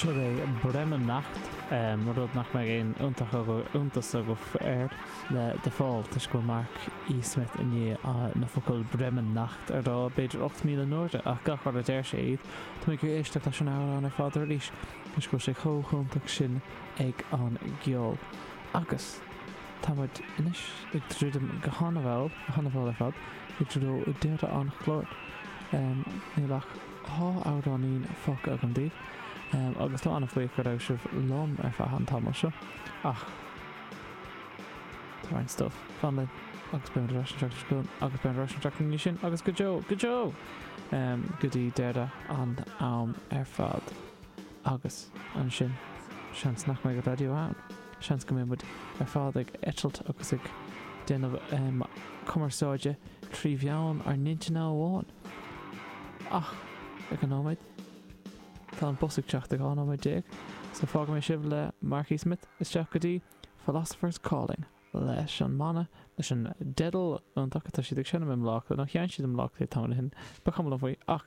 Sin é Bremen Nacht, rud nach mbeidh aon iontas agaibh air, le The Fall, toisc go bhfuil Mark E. Smith i ndiaidh na focail Bremen Nacht a rá b'fhéidir 8,000 n-uair ach gach uair a deir sé iad, táimid ag éisteacht leis an amhrán ar fad arís, toisc go bhfuil sé chomh hiontach sin ag an gceol. Agus. Tá muid anois ag druidim go han-mhall, han-mhall ar fad, i dtreo deireadh an chláir. Níl ach dhá amhráinín fágtha agam daoibh agus táim an-bhuíoch go raibh sibh liom ar feadh an tamaill seo. Ach tá roinnt stuif online agus beimid ar ais an tseachtain seo chugainn agus beimid ar ais an tseachtain ina dhiaidh sin agus go deo, go deo! go dtí deireadh an am ar fad. Agus ansin, seans nach mbeidh raidió ann. Seans go mbeidh muid ar fad ag eitilt agus ag déanamh cumarsáide trí mheán ár n-intinne amháin. Ach, ag an nóiméad, tá an bus ag teacht i 12 nóiméad, so fágfaidh mé sibh le Mark E. Smith isteach go dtí Philosopher's Calling leis an mbanna, leis an dteideal iontach atá siad ag seinm i mBlá Cliath, nó sheinn siad i mBlá Cliath tamall ó shin, ba chuma liom faoi, ach.